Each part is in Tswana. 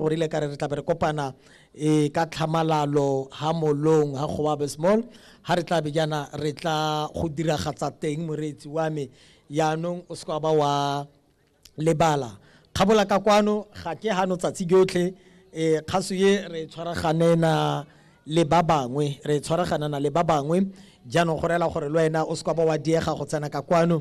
O rile ka re re tlabe re kopana e ka tlhamalalo ha molong ha Goabe Small ha re tlabe jaana re tla go diragatsa teng moreetsi wa me yaanong o seka ba wa lebala kgabola ka kwano ga ke hano tsatsi jotlhe um kgaso ye re tshwaraganena le ba bangwe re tshwaraganana le ba bangwe jaanong go reela gore le wena o seka ba wa diega go tsena ka kwano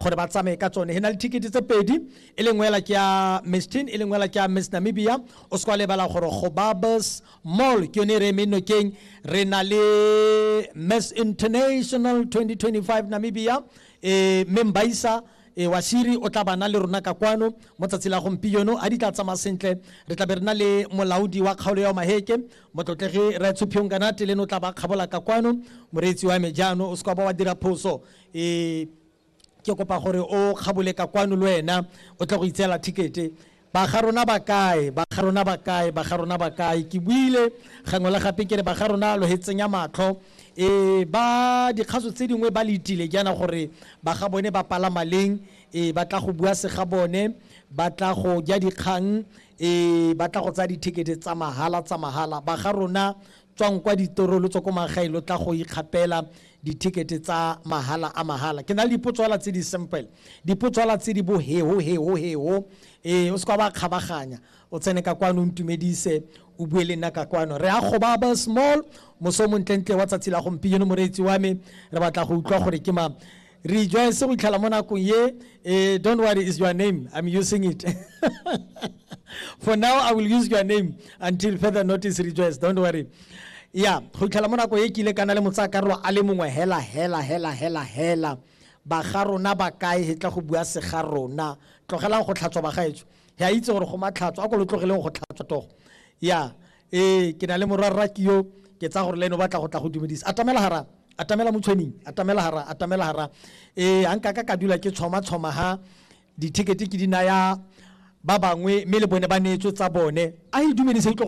gore ba tsamaye ka tsone he na le thikete tse pedi e lengwe ela ke ya miss tin e lengwe ela ke ya miss namibia o se kwa lebala gore go babes mall ke yone e re eme nokeng re na le miss international 2025 namibia um mme mbaisa e wa shiri o tla bana le rona ka kwano mo tsatsi la gompieno a di tla tsamaya sentle re tla be re na le molaodi wa kgaolo ya maheke motlotlegi raetshuphiong kanate le no tla ba kgabola ka kwano moreetsi wa me jaano o se kwa ba wa dira phoso e ke kopa gore o kgabole ka kwano le wena o tle go itseela thikete ba ga rona ba kae ba ga rona ba kae ba ga rona ba kae ke buile gangwe le gape ke re ba ga rona lo he tsenya matlho e ba dikgaso tse dingwe ba le itile jaana gore ba ga bone ba palama leng e ba tla go bua se ga bone ba tla go ja dikgang e ba tla go tsaya dithekete tsa mahala tsa mahala ba ga rona tswang kwa ditoro lo tswa ko magaeng lo tla go ikgapela dithekete tsa mahala a mahala ke na le dipotso fela tse di simple dipotso fela tse di bo heho heho heho ee o se kwa ba kgabaganya o tsene ka kwano o ntumedise o bue le nna ka kwano re a gobaba small moso o montlentle wa tsatsi la gompieno moreetsi wa me re batla go utlwa gore ke ma rejoice go itlhela mo nakong ye eh, don't worry is your name i'm using it for now i will use your name until further notice rejoice don't worry ya go itlhela mo nako e kile kana le motsakarolo a le mongwe hela hela hela hela hela ba ga rona ba kae he tla go bua se ga rona tlogelang go tlhatswa ba gaetso he a itse gore go matlhatso a ko lo tlogeleng go tlhatswa togo ya ee ke na le morwarra ke yo ke tsaya gore le ene o batla go tla go dumedisa atamela hara atamela motshwening atamela hara atamela hara ee a nkaka ka dula ke tshoma-tshoma ha dithekete ke di naya ba bangwe mme le bone ba neetswe tsa bone a e dumedise utlwe